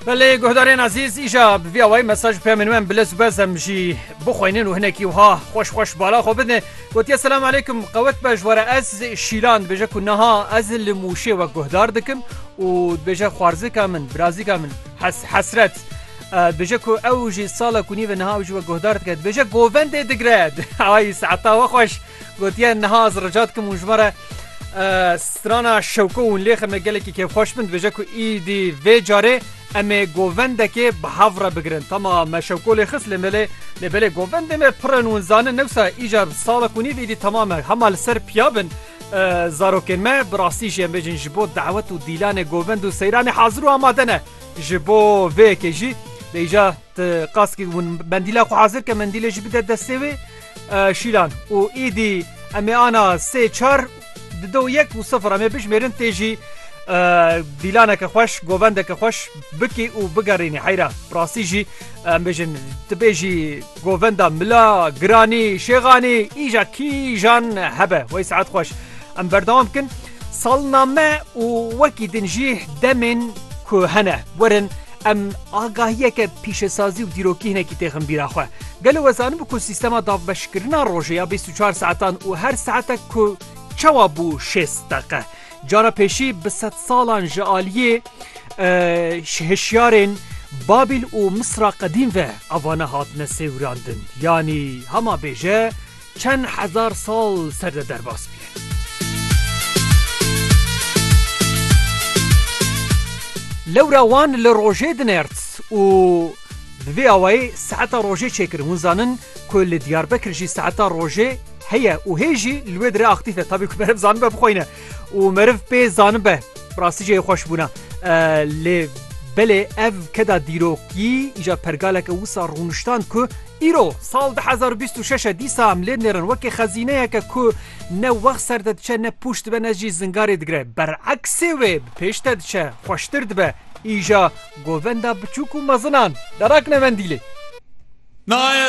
Belê guhdarên azîz îja bi vî awayî mesaj pê min wem bile zûbez em jî bixwînin û hinekî wiha xweş xweş bala xwe bidin. Gotiye selam aleykum qewet be ji were ez şîlan dibêje ku niha ez li mûşê wek guhdar dikim û dibêje xwarzika min birazîka min hes hesret. Dibêje ku ew jî sala ku nîve niha ew jî we guhdar dike dibêje govendê digre awayî saeta we xweş. Gotiye niha ez rica dikim hûn ji me re strana şewko hûn lê xeme gelekî kêfxweş bin dibêje ku îdî vê carê em ê govendekê bi hev re bigirin. Tama me şewko lê xist lê me lê lê belê govendê me pir in hûn zanin newsa îcar salek û nîv îdî tama me hema li ser piya bin zarokên me bi rastî jî em bêjin ji bo dawet û dîlanê govend û seyranê hazir û amade ne ji bo vê yekê jî lê îcar Ti kaskê û mendîla xwe hazir ke mendîlê jî bide destê wê. Şîlan û êdî em ê ana sê çar di do yek û sifir em ê bijimêrin tê jî dîlaneke xweş govendeke xweş bikî û bigerînî heyra bi rastî jî em bêjin tu bê jî govenda mila giranî şêxanî îja kîjan hebe wey saet xweş em berdewam bikin salname û wekî din jî demên ku hene werin Em agahiyeke pîşesazî û dîrokî hinekî têxin bîra xwe. Gelo we zanibû ku sîstema davbeşkirina rojê ya bîst û çar saetan û her saetek ku çawa bû şêst deqe? Cara pêşî bi sedsalan ji aliyê hişyarên Babîl û Misra qedîm ve evane hatine sêwirandin. Yanî hema bêje, Çend hezar sal ser de derbas bûye. Lewra wan li rojê dinert û bi vê awayê saeta rojê çêkirin. Hûn zanin ku li Diyarbekir jî saeta rojê heye û hê jî li wê dire aktîf e. Tabî ku meriv zanibe bixweyne û meriv pê zanibe bi rastî cihê xweş bûna. Lê belê ev keda dîrokî îja pergaleke wisa rûniştand ku Îro, sal du hezar û bîst û şeş e dîsa em lêd nêrin wekî xezîneyeke ku ne wext ser de diçe ne pûç dibe ne jî zingarê digre. Bereksê wê bi pêş de diçe, xweştir dibe. Îja govenda biçûk û mezinan derakine mendîlê.